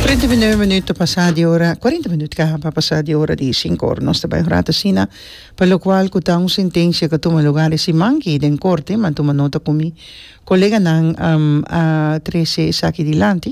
Trenta i nueve minuut ta pasa di ora cuarenta minuut kaha pa pasa di ora di sinku ora nos ta bai un rato asina pa locual cu ta un sentencia cu a tuma lugar e siman aki den corte m'a tuma nota cu mi coleganan a trece esaki dilanti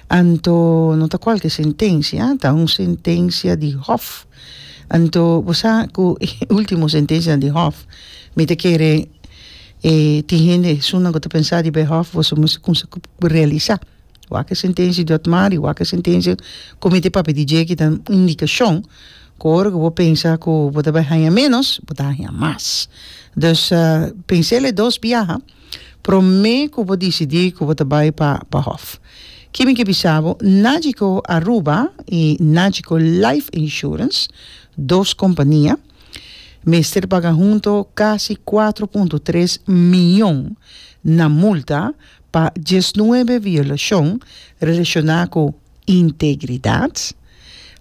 anto no ta cualke sentencia ta un sentencia di hof anto bo sa cu e ultimo sentencia di hof mi ta kere E tin hende esun nan ku ta pensa di bay hof boso mester kumsa ku realisa wak e sentencia di otmari wak e sentencia comite papia di dje ki ta indicacion ku ora ku bo pensa ku bo ta bay haña menos bo ta haña mas dus pensel e dos biaha prome ku bo dicidi ku bo ta bay pa pa hof ki mi ke bisa bo Nagico Aruba y Nagico life insurance dos compania mester paga hunto kasi kuatro punto tres mion na multa pa diesnuebe violashon relashoná ku integridat,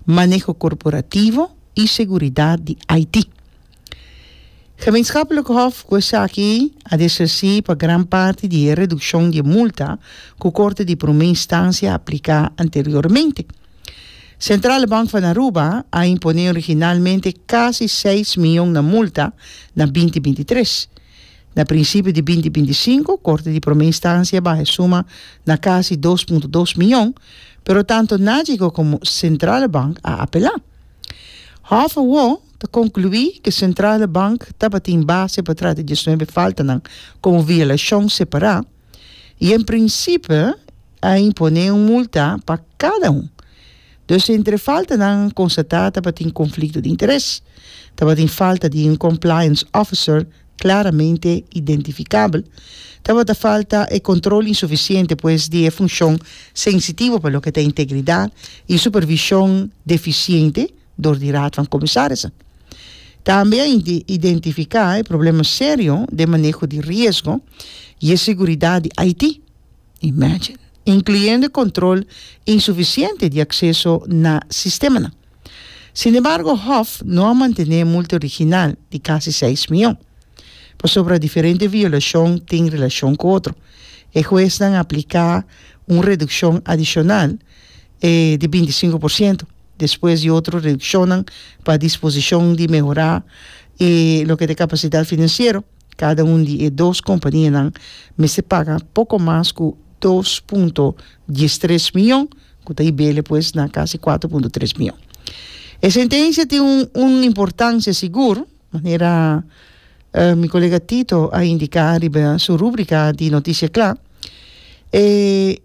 maneho korporativo i seguridat di Haití. Gemeenschapelijk Hof ku esaki a desresí pa gran parti di e redukshon di e multa ku Korte di Promé Instansia a apliká anteriormente. Centrale Bank van Aruba a imponé originalmente casi seis miyon na multa na binti binti tres. Na principio di binti binti sinku Corte di Prome Instancia baha e suma na casi dos punto dos miyon, pero tanto Nagico como Centrale Bank a apelá. Hof awor ta concluí cu Centrale Bank tabatin base pa trata diecinuebe faltanan como violacion separá. y en principe a impone un multa pa cada un. Dus si entre faltanan constata tabatin conflicto di interes, tabatin falta di un compliance officer claramente identificable, tabata falta e control insuficiente pues di e funcion sensitivo pa loke ta integridad y supervision deficiente, dor di Raad van Commissarissen. Tambe a identifica e problema serio den maneho di riesgo y e seguridad di Haiti, imagine, incluyendo e control insuficiente di acceso na sistemanan. Sin embargo, Hof no a mantene e multa original di casi seis miyon, pasobra diferente violacion tin relacion cu otro. E huesnan a aplica un reduccion adicional di binticinco por ciento. despues di otro reduccionnan pa disposicion di mehora e loke ta e capacidad financiero, cada un di e dos companianan mester paga poco mas cu dos punto dies tres miyon, cu ta hibele pues na casi cuatro punto tres miyon. E sentencia tin un un importancia sigur, manera mi colega Tito a indica riba su rubrica di Noticia Cla, e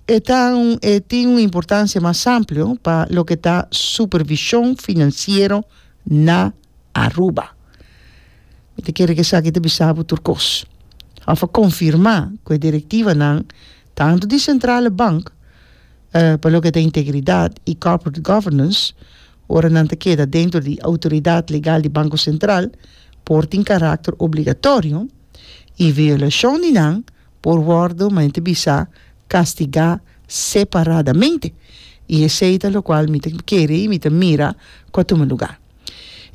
E ta un e tin un importancia mas amplio pa loke ta supervision financiero na Aruba. Mi ta kere cu esaki ta bisa bo tur cos of a confirma cu e directivanan tanto di Centrale Bank pa loke ta integridad y corporate governance ora nan ta keda dentro di autoridad legal di Banco Central por tin caracter obligatorio y violacion di nan por wòrdu mente bisá kastigá separadamente, i esei ta lokual mi ta kere i mi ta mira ku a tuma lugá.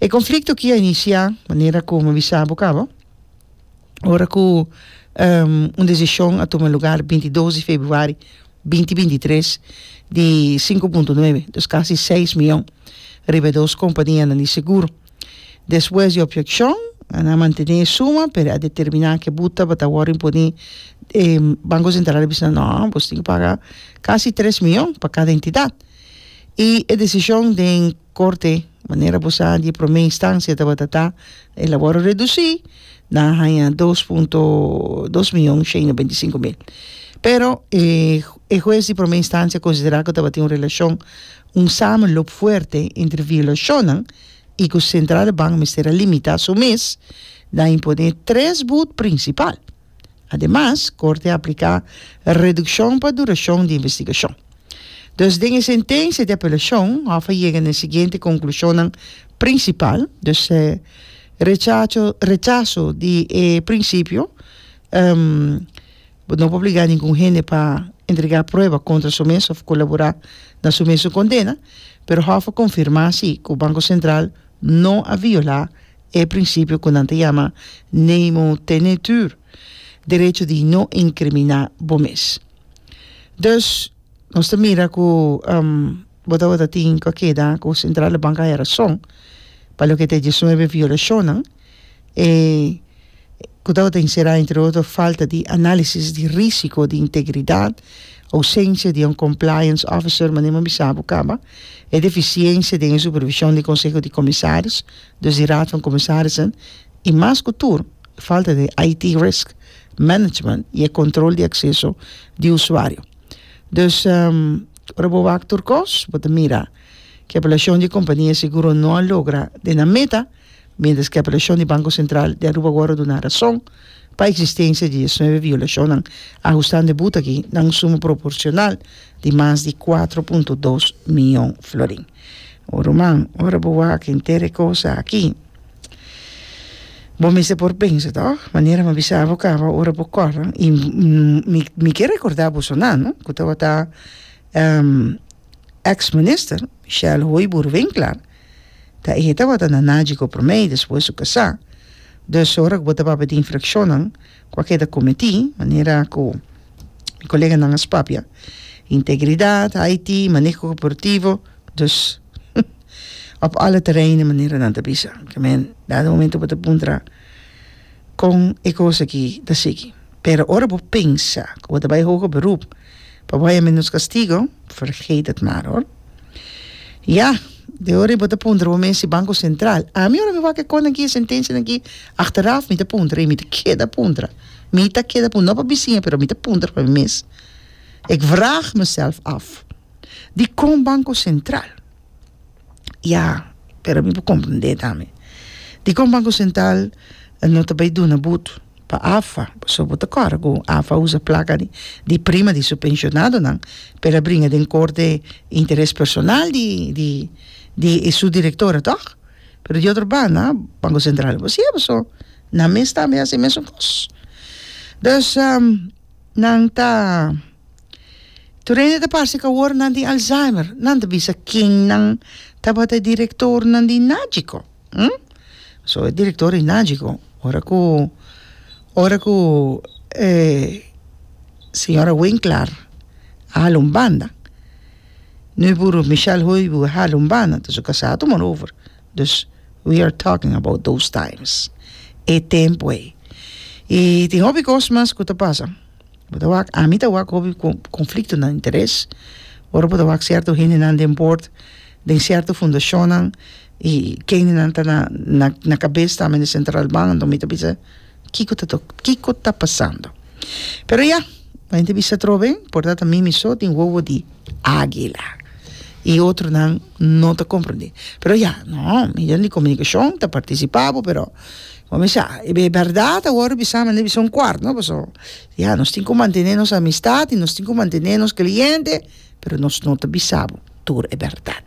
E konflikto ki a inisiá, manera ku mi a bisa bo kaba, ora ku un desishon a tuma lugá di binti dos di februari binti binti tres di sinku punto nuebe, dos kasi seis miyon, riba e dos kompanianan di seguro. Despues di opjekshon, nan a mantené e suma, pero e a determiná ku e bu tabata wòrdu imponí. E Banko Sentral a bisa, Nò, boso tin ku paga kasi tres mion pa kada entidat. I e desishon den korte, manera bo sa, di e promé instansia tabata ta el a wòrdu redusí, nan a haña dos punto dos mion shen i beinti sinku mil. Pero e hues di promé instansia konsiderá ku tabatin un relashon Un samenloop fuerte entre violacionnan y cu Centraal de Bank mester a limita su mes na impone tres boet principal. Ademas, Corte a aplica reduccion pa duracion di investigacion. Dus den e sentencia di apelacion, Hof a yega na e siguiente conclusionnan principal, dus, Rechazo di e principio, Bo no por obligá ningun hende pa entregá prueba kontra su mes òf kolaborá na su mesun kondena, pero Hof a konfirmá sí ku Banko Sentral no a violá e prinsipio ku nan ta yama nemo tenetur, derecho di no inkriminá bo mes. Dus, nos ta mira ku bo tabata tin ku a keda ku Sentral Bank a haya rason pa loke ta e diesnuebe violashonnan, e ku tabata enserá entre otro falta di análisis di risiko di integridat, ousensia di un compliance officer manera mi bisa bo kaba, e defisiensia den e supervishon di konseho di komisaris, dus di raad van comisarissen, i mas ku tur e falta di IT risk management i e kontrol di akseso di usuario. Dus ora bo wak tur kos bo ta mira ku e evaluashon di e kompania seguro no a logra den nan meta. Mientras ke apelashon di Banko Sentral di Aruba wòrdu duna rason pa eksistensia di diesnuebe violashonnan ahustando e buta aki na un suma proporshonal di mas di kuatro punto dos miyon florin. O ruman, ora bo wak henter e kosa aki, bo mester por pensa tò, manera m'a bisa bo kaba ora bo kòrda, i mi mi ke rekorda boso nan ku tabata ex minister Shel Hoybuur Winkler, Ta e tabata na naji ku promé i despues su kasá. Dus ora ku bo ta papia di infrakshonnan ku a keda kometí, manera ku mi koleganan a spapia, integridat, IT, maneho korporativo, dus òf alle tereinnan, manera nan ta bisa. Ke men, dado momento bo ta puntra kon e kos aki ta sigui. Pero ora bo pensa ku bo ta bai hoger berup. pa bo haya menos castigo, vergeet het maar hoor. Ya, de ora y bo ta puntra bo mes si Banco Central, ami ora mi wak e cosnan aki, e sentencianan aki, achteraf mi ta puntra y mi ta keda puntra, mi ta keda puntra, no pa bisiña pero mi ta puntra pa mi mes, ik vraag mezelf af, dicon Banco Central? Ya, pero mi por comprende tambe. Dikon Banco Central no ta bay duna but pa AFA? Pasobra bo ta kòrda ku AFA a usa plaka di di prima di su pensionadonan pa el a bringa den korte interes personal di di di e su direktonan tòg? Pero di otro banda Banco Central no por hasié bo so, nan mes tambe a hasi e mesun kos. Dus. Nan ta tur hende ta parse ku awor nan tin alzheimer nan ta bisa ken nan tabata e directornan di najico so e director di najico ora ku ora ku e señora winklar a hala un banda no e buru Michel hoybu a hala un banda entonces kasa a tuman over Dus, we are talking about those times, e tempu ei. I tin hopi kos mas ku ta pasa. Bo ta wak, ami ta wak hopi kon, konflikto na interes, ora bo ta wak sierto hendenan den bord, den sierto fundashonnan, i kendenan ta na, na, na kabes ta men di Sentralbank, anto mi ta bisa, Kiko ta tok kiko ta pasando pero ya bai entrevista trobe por dat ta mimi so tin wowo di aguila y otro nan no ta comprende pero ya no medio di comunicacion ta participa bo pero como mi sa e berdad awor bisa mende bisa un cuart no paso ya nos tin cu mantene nos amistad y nos tin cu mantene nos cliente pero nos no ta bisa bo tur e berdad.